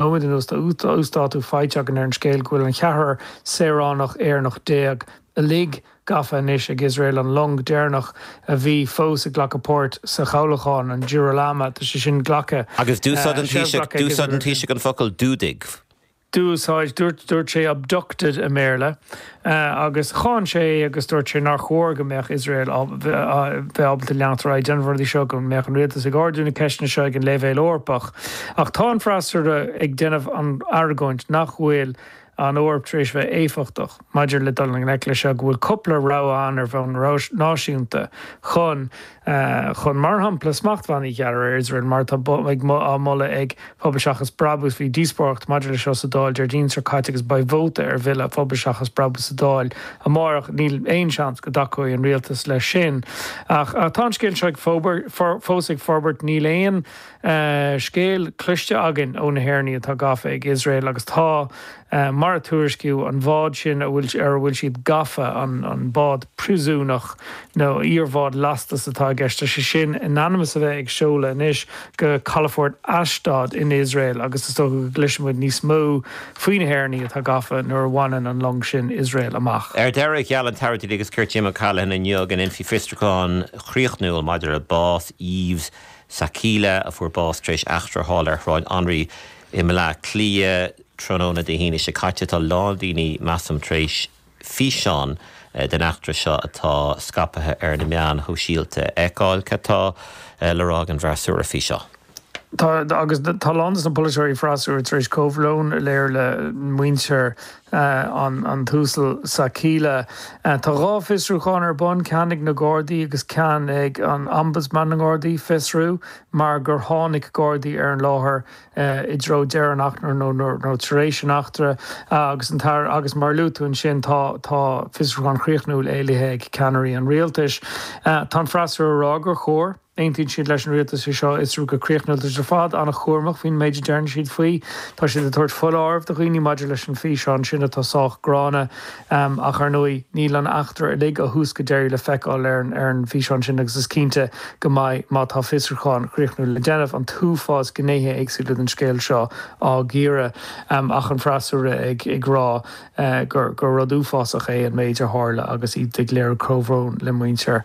nóiméad anuas, tá uasdátú fáilte againn ar an scéal go bhfuil an cheathrar saoránach Éireannach déag uilig gafa anois ag Iosrael, an long deireanach a bhí fós ag glacadh páirt sa chabhlachán, an Girolama, tá sé sin glactha, Agus d'úsáid an Taoiseach, d'úsáid an Taoiseach an focal fuadaigh. D'úsáid, dúirt, dúirt sé abducted i mBéarla, agus cháin sé é agus dúirt sé nár chóir go mbeadh Iosrael a bheith ábalta leanacht ar aghaidh ag déanamh na rudaí seo go mbeadh an rialtas ag ardú na ceisteanna seo ag an leibhéal Eorpach, ach tá an freasúra ag déanamh an argóint nach bhfuil an Eoraip tar éis bheith éifeachtach maidir le dul i ngleic leis seo, go bhfuil cúpla rogha ann ar bhonn náisiúnta chun. chun, mar shampla, smachtbhannaí a ghearradh ar Iosrael, mar atá á moladh ag Pobal Seachas Brabús. Bhí díospóireacht maidir leis seo sa Dáil Déardaoin seo caite agus beidh vóta ar bhille Phobal Seachas Brabús sa Dáil amárach. Níl aon seans go dtacóidh an Rialtas leis sin ach tá an scéal seo fós ag forbairt. Níl aon. scéal cloiste againn ó na hÉireannaigh atá gafa ag Iosrael agus tá, mar a tuairiscíodh, an bhád sin ar a bhfuil siad gafa, an bád príosúnach nó iarbhád lastais atá i gceist, tá sé sin in ainm is a bheith ag seoladh anois go calafort Ashdod in Iosrael agus is dócha go gcloisfidh muid níos mó faoi na hÉireannaigh atá gafa nuair a bhaineann an long sin Iosrael amach. Ar deireadh, gheall an tAire Dlí agus Cirt Jim O'Callaghan inniu go ndéanfaí fiosrúchán críochnúil maidir le bás Yves, Sakila, a fuair bás tar éis eachtra thall ar Shráid Anraí i mBleá Cliath tráthnóna Dé hAoine seo caite. Tá a lán daoine, measaim, tar éis físeán den eachtra seo atá scaipthe ar na meáin shóisialta a fheiceáil. Cad tá le rá ag an bhfreasúra faoi seo? Tá, agus tá a lán de na polaiteoirí freasúra tar éis comhbhrón a léiriú le muintir A, an tUasal Sakila. Tá dhá fiosrúchán ar bun, ceann ag na Gardaí agus ceann ag an Ombudsman na nGardaí, Fiosrú, mar gur tháinig Gardaí ar an láthair i dtreo deireadh an eachtra nó tar éis an eachtra agus tá an tAire agus mar a luaigh tú ansin tá tá fiosrúchán críochnúil éilithe ag ceannairí an Rialtais. Tá an freasúra a rá gur chóir. Aontaíonn siad leis an Rialtas é seo a fhiosrú go críochnúil. Tá siad ar fad an-chúramach faoin méid a deireann siad faoi. Tá siad ag tabhairt foláirimh do dhaoine maidir leis an físeán sin atá sách gránna. Ach, ar ndóigh, níl an eachtra uilig ó thús go deireadh le feiceáil ar an bhfíseán sin agus is cinnte go mbeidh má tá fiosrúchán críochnúil le déanamh an t-uafás gnéithe éagsúla den scéal seo á gcíoradh ach an freasúra ag rá gur rud uafásach é an méid a tharla agus iad ag léiriú comhbhrón le muintir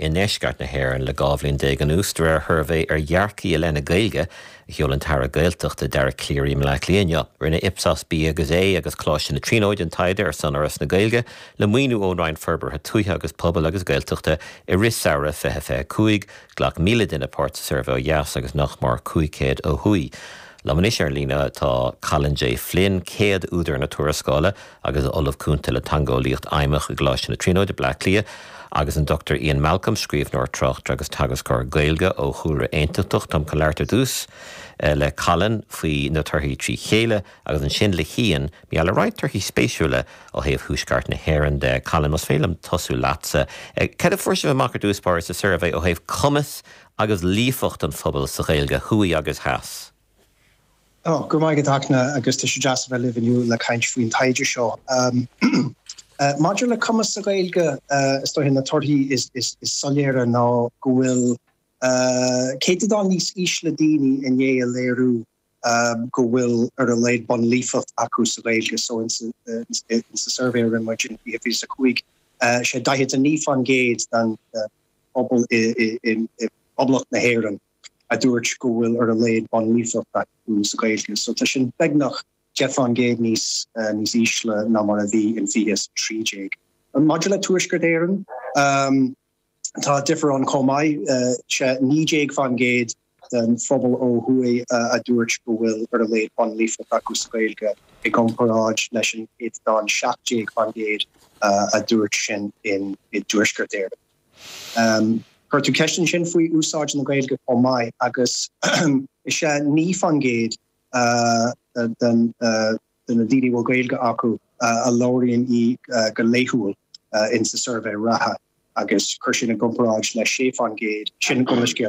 i ndeisceart na hÉireann le 12 bhliain anuas, de réir shuirbhé ar dhearcthaí i leith na Gaeilge a sheol an tAire Gaeltachta, Dara Calleary, i mBleá Cliath inniu. Rinne Ipsos B agus A agus Coláiste na Tríonóide an taighde ar son Fhoras na Gaeilge, le maoiniú ón Roinn Forbartha Tuaithe agus Pobail agus Gaeltachta, i rith samhradh 2025. Ghlac 1,000 duine páirt sa suirbhé ó dheas agus nach mór 500 ó thuaidh. Liom anois ar an líne tá Colin J. Flynn, céad údar na tuarascála agus Ollamh Cúnta le Teangeolaíocht Fheidhmeach i gColáiste na Tríonóide, Baile Átha Cliath, agus an Dr Ian Malcolm, scríbhneoir, tráchtaire agus teagascóir Gaeilge ó chúlra Aontachtach. Táim chun labhairt ar dtús le Colin faoi na torthaí trí chéile agus ansin le hIan mar gheall ar roinnt torthaí spéisiúla ó thaobh Thuaisceart na hÉireann de. Colin, más féidir liom tosú leatsa. Céard a fuair sibh amach ar dtús báire sa suirbhé ó thaobh cumas agus líofacht an phobail sa Ghaeilge, thuaidh agus theas. Go raibh maith agat, Eithne, agus tá sé deas a bheith libh inniu le caint faoin taighde seo. Maidir le cumas sa Ghaeilge, is dóiche, na torthaí is soiléire ná go bhfuil céatadán níos ísle daoine i ndiaidh a léiriú go bhfuil ar a laghad bunlíofacht acu sa Ghaeilge. So insa suirbhé a rinne muid in 2025, 'sé 49% den phobal i bPoblacht na hÉireann a dúirt go bhfuil ar a laghad bunlíofacht acu sa Ghaeilge. So tá sin beagnach 10% níos níos ísle ná mar a bhí in 2013. Maidir le Tuaisceart Éireann, Tá difear ann chomh maith, 'sé 19% den phobal ó thuaidh a dúirt go bhfuil ar a laghad bunlíofacht acu sa Ghaeilge i gcomparáid leis an gcéatadán 17% a dúirt sin i dTuaisceart Éireann. Chuir tú ceist ansin faoi úsáid na Gaeilge chomh maith agus is é 9% den de na daoine a bhfuil Gaeilge acu a labhraíonn í go laethúil in sa suirbhé reatha agus cuir sin i gcomparáid le 6% sin an gcomhscéal.